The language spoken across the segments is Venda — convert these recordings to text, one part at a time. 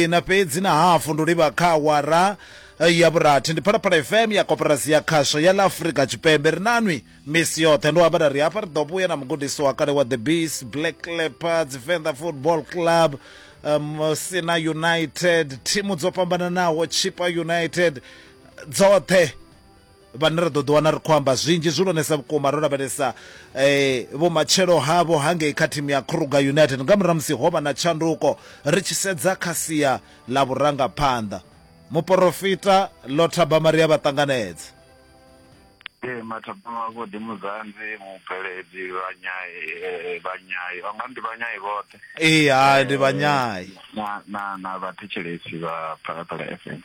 ina fhedzi na hafu ndi u livha kha awara ya vhurathi ndi phalaphala fm ya koporasi ya khasho ya la afurika tshipembe ri nanwi misi yoṱhe ndo amba ri hafha ri ḓo vhuya na mugudisi wa kale wa the beast black leopards venḓa football club um, sina united thimu dzo fhambananaho chipa united dzoṱhe vhane ra ḓo ḓiwana ri khou amba zwinzhi zwihulwanesa vhukuma ro lavhelesa vhumatshelo havho hangei kha thimu ya Kruger United nga murahu musi ho vha na tshanduko ri tshi sedza kha sia ḽa vhurangaphanḓa. Muporofita Ḽo Thabama ri a vha ṱanganedza. Ee, Mathabama vho ḓi Muzanzi, mubveledzi, vhanyai, vhanyai, vha nga ndi vhanyai vhoṱhe. ee hai ndi vhanyai na na na vhathetshelesi vha phalaphala f m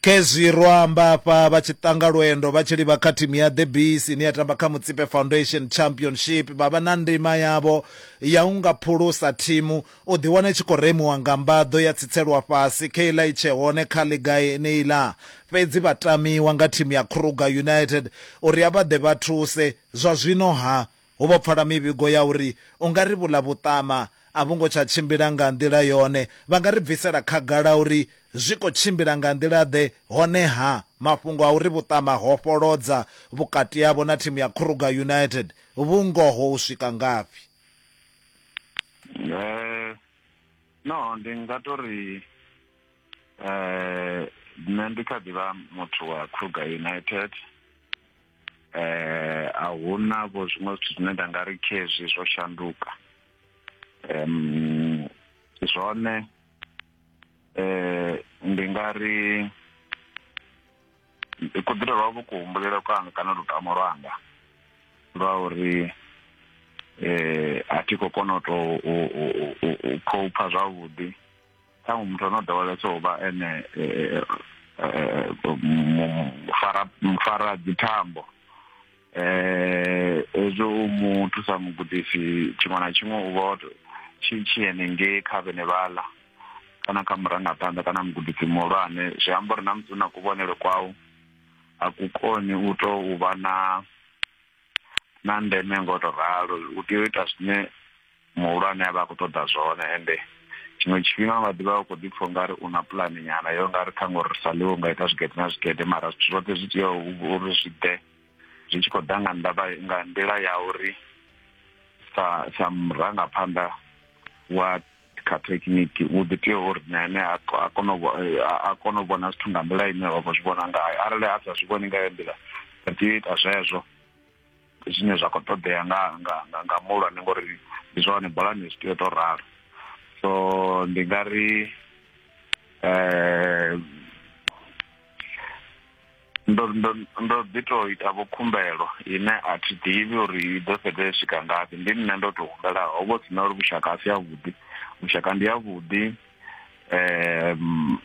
khezwi ro amba afha vha tshi ṱanga lwendo vha tshi livha kha thimu ya the bees ine ya tamba kha mutsipe foundation championship vha vha na ndima yavho ya u nga phulusa thimu u ḓiwana i tshi khou remiwa nga mbaḓo ya tsitselwa fhasi khe iḽa i tshe hone kha ḽiga yeneiḽa fhedzi vha tamiwa nga thimu ya kruger united uri a vha ḓe vha thuse zwa zwino ha Hu vho pfala mivhigo ya uri u nga ri vhuḽa vhuṱama a vhu ngo tsha tshimbila nga nḓila yone. Vha nga ri bvisela khagala uri zwi khou tshimbila nga nḓila-ḓe? Honeha, mafhungo a uri vhuṱama ho fholodza vhukati havho na thimu ya Kruger United vhu ngoho u swika ngafhi? No, ndi nga tou ri nṋe ndi kha ḓi vha muthu wa Kruger United. eh a huna vho zwiṅwe zwithu zwine nda nga ri khezwi zwo shanduka em zwone eh ndi nga ri kuḓilo lwa vho kuhumbulelo kwanga kana lutamo lwanga lwa uri eh a thi khou kona u tou u khou pfa zwavhuḓi ṱhaṅwe muthu ano dowelesa u vha ene mufara mufara dzithambo um hezwo u mu thusa mugudisi tshiṅwe na tshiṅwe u vha tshi tshi henengei kha vhene vhaḽa kana kha murangaphanḓa kana mugudisi muhulwane zwi amba uri na musi u na kuvhonele kwau a ku koni u tou vha na na ndeme ngo to ralo u tea u ita zwine muhulwane a vha a khou ṱoḓa zwone ende tshiṅwe tshifhinga nga ḓivha u khou ḓi pfha ungari u na pulani nyana yo nga ri ṱhaṅwe uri sa ḽiwo nga ita zwigede na zwigede mara zwithu zwoṱhe zwi tea uri zwi ḓe zwi tshi khou ḓa nga ndavha nga nḓila ya uri sa sa murangaphanḓa wa kha thekhiniki u ḓi tea uri na ene a kone a kone u vhona zwithu nga nḓila ine wa khou zwi vhona ngayo arali a sa zwi vhoni nga yo nḓila a tea u ita zwezwo zwine zwa khou ṱoḓea nga nga nga muhulwane ngori ndi zwa hone bolani zwi tea u tou ralo so ndi nga ri um ndo ndo ndo ḓi to ita vho khumbelo ine a thi ḓivhi uri i ḓo fhedza i swika ngafhi ndi nṋe ndo to humbela ho vho sina uri vhushaka a si yavhuḓi vhushaka ndi yavhuḓi um